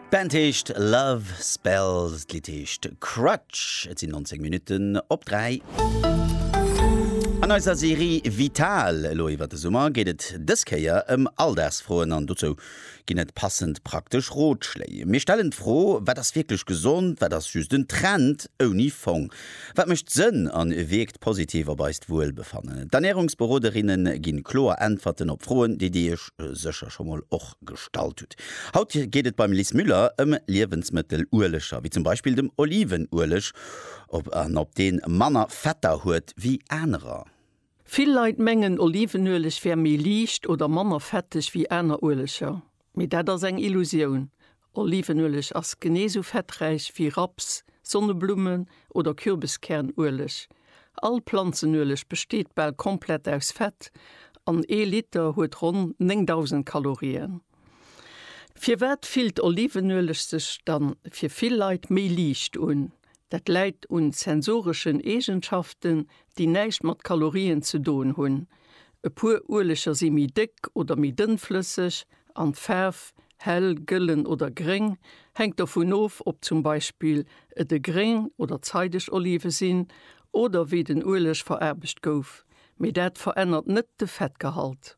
D'Band heescht Love Spells, d'Lidd heescht Crutch. Et sinn 19 Minutten op 3. An eiser Serie Vital elo iwwer de Summer geet et dës Kéier ëm Alldagsfroen an dozou ginn et passend praktesch Rotschléi. Mir stellen d'Fro, wat ass wierklech gesond, wat ass just en Trend ouni Fong? Wat mécht Sënn an wierkt positiv op eist Wuelbefannen. D'Ernärungsberoderinne ginn kloer Äntwerten op Froen, déi Dir Iech sécher scho mol och gestallt hutt. Haut geet et beim Lis Müller ëm Liewensmëttelueleger, wéi zum Beispill dem Olivenueleg, ob an ob deen manner Fetter huet wéi anerer. Vill Leit mengen Olivenueleg wär méi liicht oder manner fetteg wéi aner Ueleger, mee dat ass eng Illusioun. Olivenueleg ass genee sou fetträich wéi Raps, Sonneblummen oder Kürbeskiärnueleg. All Planzenueleg besteet bal komplett aus Fett an ee Liter huet ronn 9.000 Kalorien. Firwat fillt Olivenueleg sech dann fir vill Leit méi liicht un? Dat läit un sensoreschen Eegenschaften, déi näischt mat Kalorien ze doen hunn. E puer Ueleger si méi déck oder méi dënnflësseg an d'Faarf, hell, gëllen oder gréng, hänkt dovun of, ob zum Beispill et e gréng oder zeideg Olive sinn oder wéi den Ueleg veraarbecht gouf. Mee dat verännert net de Fettgehalt.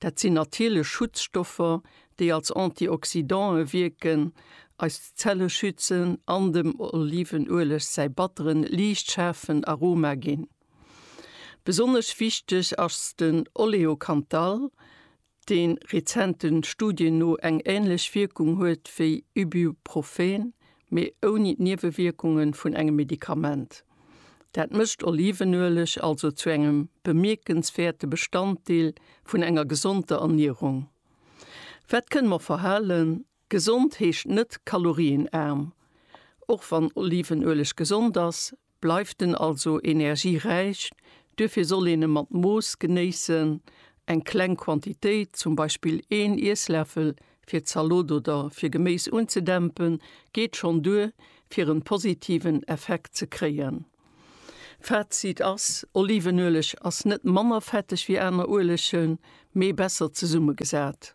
Dat sinn natierlech Schutzstoffer, déi als Antioxydantë wierken, eis Zelle schützen an dem Olivenueleg säi batteren, liicht schaarfen Aroma ginn. Besonnesch wichteg ass den Oleocanthal, deen rezente Studien no eng änlech Wierkung huet wéi Ibuprofen, mee ouni d'Niewewierkunge vun engem Medikament. Dat mécht Olivenueleg also zu engem bemierkenswäerte Bestanddeel vun enger gesonder Ernierung. Wat kënne mer verhalen? Gesond heescht net kalorienaarm. Och wann Olivenueleg gesond ass, Bleift en also energieräich, duerfir soll een e mat Mooss genéissen, eng kleng Quantitéit, zum Beispill een Iessläffel fir d'Zalot oder fir Geméis unzedämpen, geet schonn duer fir en positiven Effekt ze kréien. Fazit ass, Olivenueleg ass net manner fetteg wéi aner Uelegen, mee besser zesummegesat.